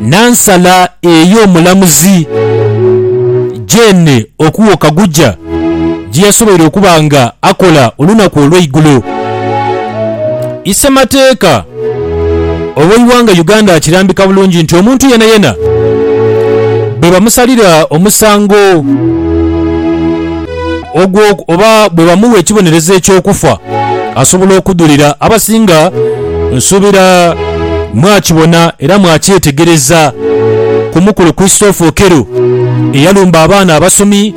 Nansala eyo omulamuzi Jane Okuo Kaguja gye yasoboire okuba nga akola olunaku olweigulo, isemateeka oweighanga Uganda akirambika bulungi nti omuntu yenayena bwebamusalira omusango, ogwo oba bwe bamuwa ekibonerezo eky'okufa, asobola okudhulira. Abasinga nsuubira mwakibona era mwakyetegereza ku mukulu Christopher Okello eyalumba abaana abasomi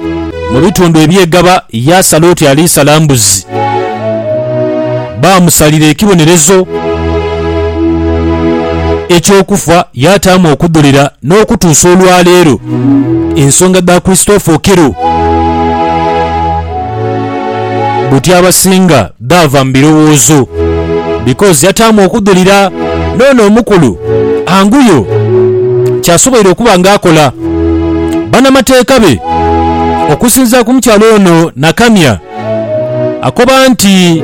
mu bitundu eby'e Gaba yaasala oti aliisala mbuzi. baamusalira ekibonerezo eky'okufa, yaataamu okudholera n'okutuusa olwaleero ensonga dha Christopher Okello buti abasinga dhaava mu birowoozo because yataamu okudholera n'ono omukulu anguyo kyasoboire okuba nga akola. Banamateeka be okusinzira ku mukyala ono Nakamya, Akoba nti,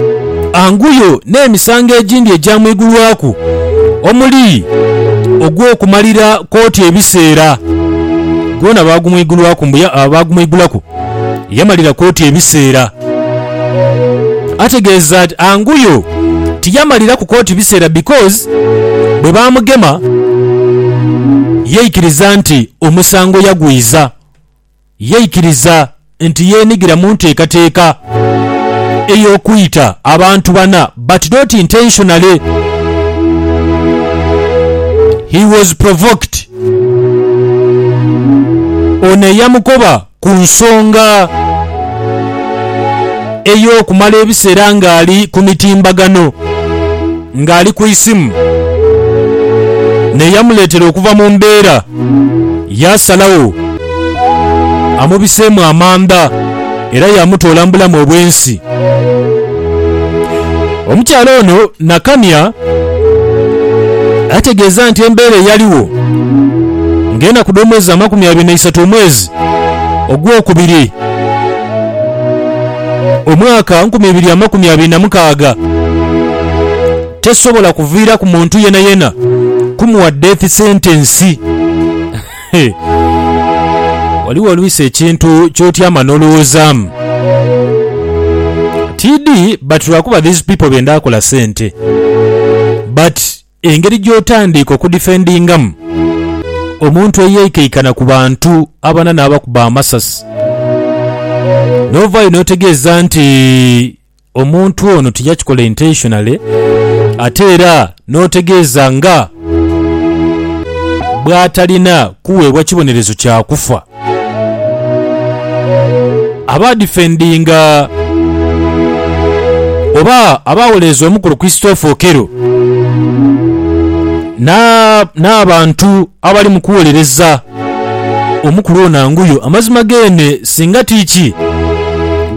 Anguyo n'emisango egindi egyamwigulwaku omuli ogw'okumalira kkooti ebiseera. Gwona baagumwigulwaku mbu baagumwigulaku yamalira kkooti ebiseera. Ategeeza nti Anguyo tiyamaliraku kkooti biseera because bwe baamugema yaikiriza nti omusango yagwiza. yaikiriza nti yeenigira mu nteekateeka ey'okwita abantu bana but not intentionally. He was provoked. Ono eyamukoba ku nsonga ey'okumala ebiseera ng'ali ku mitimbagano. ng'ali ku isimu n'eyamuleetera okuva mu mbeera, yaasalagho amubiseemu amanda era yaamutoola mu bulamu obw'ensi. Omukyala ono Nakania ategeeza nti embeera eyaligho ng'enaku dh'omwezi amakumi abiri na isatomwezi ogwokubiri, omwaka nkumi ibiri amakumi abiri na mukaaga, tesobola kuviiraku muntu yenayena kumuwa death sentence. Hee. Ghaligho oluisi ekintu kyotyama n'olowoozaamu tidhi but lwakuba these people benda kola sente but. Engeri gy'otandiika okudifendingamu omuntu eyeikaikana ku bantu abana n'abakuba amasasi, n'ovaayo n'otegeeza nti omuntu ono tiyakikola intentionally ate era n'otegeeza nga bw'atalina kuweebwa kibonerezo kya kufa. Abaadifendinga oba abaawolereza omukulu Christopher Okello n'abantu abali mu kuwolereza omukulu ono anguyo amazima geene singa ti ki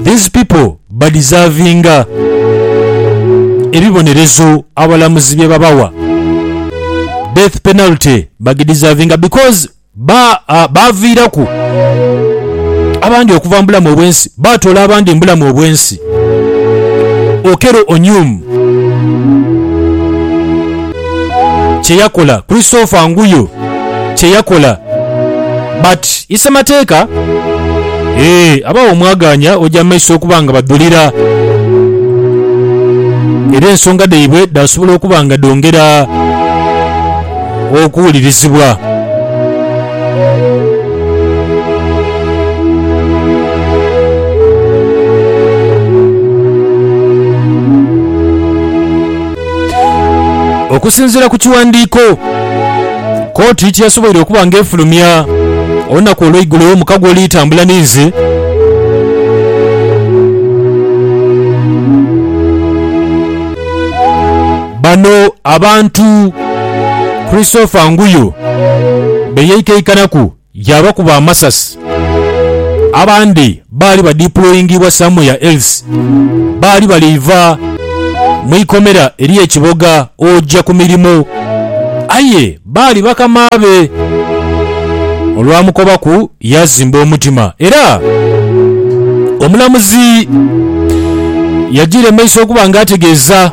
these people badizavinga ebibonerezo abalamuzi bye babawa, death penalty bagidizavinga because. Ba, a, baaviiraku abandi okuva mu bulamu obw'ensi, baatoola abandi mu bulamu obw'ensi. Okello Onyum kye yakola, Christopher Nguyo kye yakola, but ise mateeka? Ee, abagho omwagaanya oja mu maiso okuba nga badhulira, era ensonga dhaibwe dhaasobola okuba nga dhongera. okuwulirizibwa. Okusinziira ku kiwandiiko kooti kyeyasoboire okuba nga efulumya olunaku olweigulo omukago oli tambula ninze. Bano abantu Christopher Nguyo be yaikaikanaku yaabakuba amasasi. Abandi baali badipulooyingibwa somewhere else. Baali bali iva mu ikomera ery'e Kiboga oja ku mirimo aye Baali bakama be. Olwamukobaku yaazimba omutima era omulamuzi yajiira mu maiso okuba nga ategeeza.